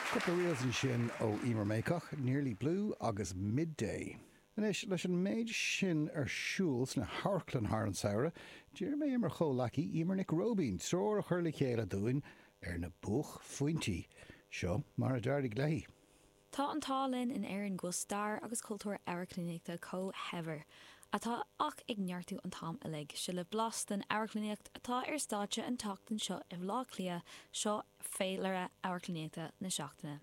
Cúpla reels ansin ó Emer Mayock, Nearly Blue agus Midday. Anois, leis an méid sin ar siúl sna hamharclann thar an samhradh, d'iarr mé ar mo chomhleacaí Eimear Nic Róibín treoir a chur le chéile dúinn ar na buaicphointí. Seo mar a d'éirigh léi. Tá an t-ádh linn in Éirinn go bhfuil stair agus cultúr amharclannaíochta chomh saibhir atá ach ag neartú an t-am uilig. Seo libh blas den amharclannaíocht atá ar stáitse an tseachtain seo i mBleá Cliath, seo féilire amharclannaíochta na seachtaine.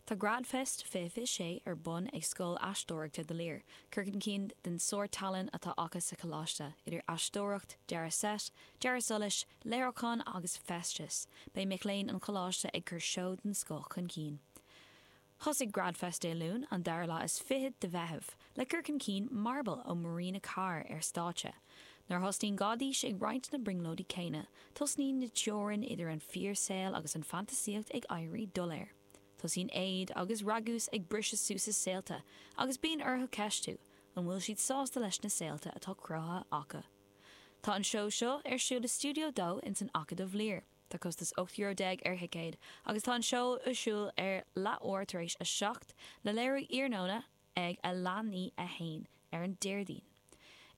Tá Gradfest 2026 ar bun ag Scoil Aisteoireachta The Lir, cur chun cinn den sárthallann atá acu sa choláiste, idir aisteoireacht, dearadh seit, Dearadh solais, léiriúchán agus feisteas, beidh mic léinn an Choláiste ag cur seó den scoth chun cinn. Thosaigh GradFest Dé Luain, an dara lá is fiche de Mheitheamh, le cur chun cinn Marble ó Marina Carr ar stáitse. Nuair a thosnaíonn Gáidís ag roinnt na brionglóidí céanna, tosnaíonn na teorainn idir an fíorshaol agus an fantasaíocht ag éirí doiléir. Tosaíonn éad agus ragús ag briseadh suas a saolta agus bíonn orthu ceistiú, an bhfuil siad sásta leis na saolta atá cruthaithe acu? Tá an seó seo ar siúl i Studio 2 ins an Acadamh Lir. Tá costas 18 euro ar thicéad agus tá an seó ar siúl ar leath uair tar éis a seacht, le léiriú iarnóna ag a leath i ndiaidh a haon ar an Déardaoin.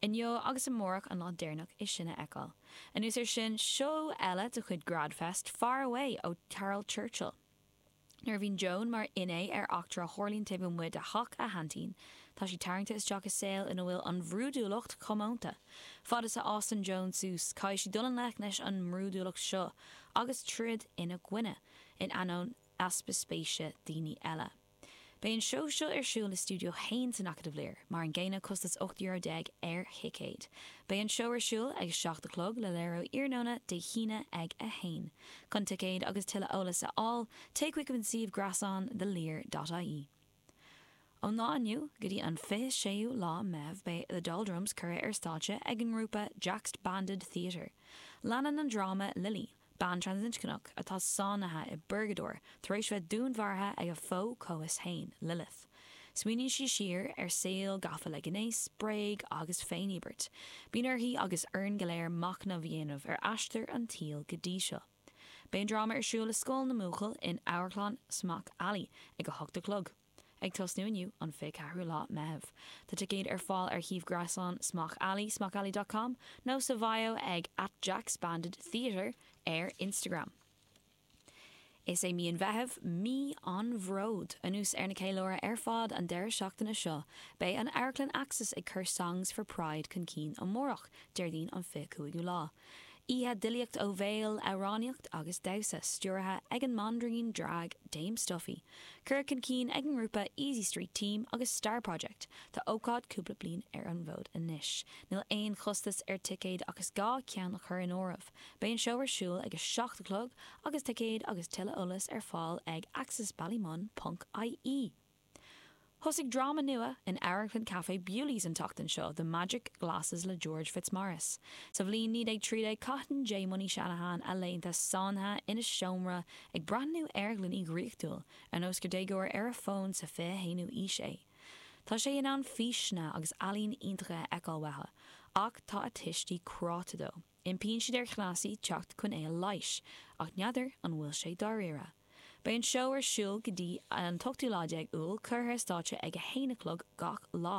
Inniu agus amárach an lá deireanach é sin a fheiceáil. Anuas ar sin, seó eile de chuid Grad Fest, Far Away ó Caryl Churchill. Nuair a bhíonn Joan mar fhinné ar eachtra a tharlaíonn taobh amuigh de theach a haintín, tá sí tarraingte isteach i saol ina bhfuil an bhrúidiúlacht comónta. Fad is a fhásann Joan suas, caithfidh sí dul i ngleic leis an mbrúidiúlacht seo agus troid ina gcoinne, in ainneoin easpa spéise daoine eile. Beidh an seó seo ar siúl i Studio 1 san Acadamh Lir, mar an gcéanna, costas 18 euro ar thicéad. Beidh an seó ar siúl ag a seacht a chlog, le léiriú iarnóna Dé hAoine ag a haon. Chun ticéid agus tuilleadh eolas a fháil, téigh chuig an suíomh gréasáin the lir dot ie. Ón lá inniu go dtí an 26ú lá Meitheamh beidh The Doldrums curtha ar stáitse ag an ngrúpa Jaxbanded Theatre. Leanann an dráma Lili, Bean transinscneach atá sáinnithe i bpurgadóir tar éis bheith dúnmharaithe ag a fo-chomhfhios fhéin, Lilith. Smaoiníonn sí siar ar shaol gafa le gnéas, bréige agus féiníobairt. Bíonn uirthi agus orainn go léir machnamh a dhéanamh ar aistear an tsaoil go dtí seo. Beidh an dráma ar siúl i Scoil na mBuachaillí in Amharclann Smock Alley ag a hocht a chlog. Ag tosnú inniu, an 24ú lá Meitheamh. Tá ticéid ar fáil ar shuíomh gréasáin Smock Alley, smockalley dot com, nó sa bhio ag at jaxbanded theatre ar Instagram. Is é mí an Mheithimh Mí an Bhróid! Anuas ar na ceiliúrtha ar fad an deireadh seachtaine seo, beidh an Amharclann Axis ag cur Songs for Pride chun cinn amárach, Déardaoin an 25ú lá. Oíche d'fhilíocht ó bhéal, amhránaíocht agus damhsa, stiúraithe ag an mbanríon drag Dame Stuffy. Curtha chun cinn ag an ngrúpa Easy Street Team agus Star Project, tá ócáid cúpla bliain ar an bhfód anois. Níl aon chostas ar ticéad ach is gá ceann a chur in áireamh. Beidh an seó ar siúl ag a seacht a chlog agus ticéid agus tuilleadh eolais ar fáil ag axisballymun.ie. Thosaigh dráma nua in amharclann Café Bewley's an tseachtain seo, The Magic Glasses le George Fitzmaurice. Sa bhliain 1913 caitheann Jaymony Shanahan a laethanta sáinnithe ina seomra ag breathnú ar ghloiní dhraíochtúil, ar nós gur déagóir ar a fón sa 21ú aois é. Tá sé in ann físeanna agus ealaín iontacha a fheiceáil uathu, ach tá a tuistí cráite dó. Impíonn siad ar chleasaí teacht chun é a leighis, ach n'fheadar an bhfuil sé dáiríre. Beidh an seó ar siúl go dtí an t-ochtú lá déag Iúil, curtha ar stáitse ag a haon a chlog gach lá.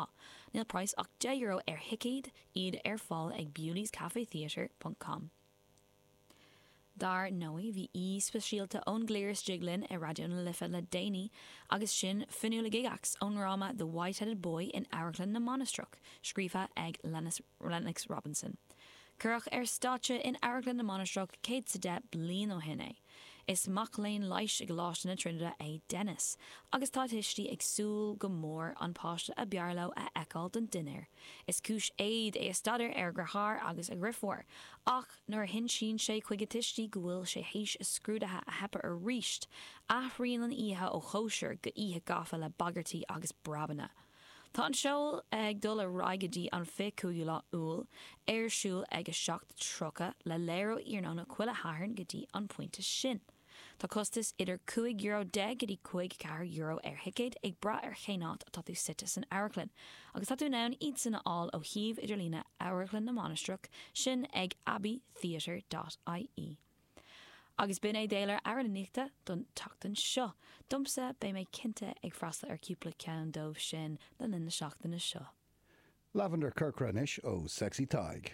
Níl praghas ach deich euro ar thicéad, iad ar fáil ag bewleyscafetheatre.com. Dar ndóigh, bhí aoi speisialta ón gcliar istigh linn i Raidió na Life le déanaí agus sin Fionnuala Gygax ón ndráma The Whiteheaded Boy in Amharclann na Mainistreach, scríofa ag Lennox Robinson. Cuireadh ar stáitse in Amharclann na Mainistreach céad 's a deich bliain ó shin é. Is mac léinn leighis i gColáiste na Tríonóide é Denis agus tá a thuistí ag súil go mór an páiste a b'fhearr leo a fheiceáil don dinnéar. Is cúis éad é a staidéar ar a dheartháir agus a dhriofúr ach, Nuair a hinsíonn sé chuig a tuistí go bhfuil sé théis a scrúdaithe a theipeadh aríst, athraíonn an oíche ó chóisir go oíche gafa le bagairtí agus breabanna. Tá an seó ag dul ar aghaidh go dtí an 25ú lá Iúil, é ar siúl ag 7:30, le léiriú iarnóna chuile Shathairn go dtí an pointe sin. Tá costas idir cúig euro déag go dtí caoga ceathair euro ar thicéad, ag brath ar chén áit atá tú suite san amharclann, agus tá tú in ann iadsan a fháil ó shuíomh idirlíne Amharclann na Mainistreach, sin ag abbeytheatre dot ie. Agus b'in é d'eolaire amharclannaíochta don tseachtain seo, domsa, beidh mé cinnte ag freastal ar cúpla ceann dóibh sin le linn na seachtaine seo. Lavender Corcra anois ó Sexy Tadhg.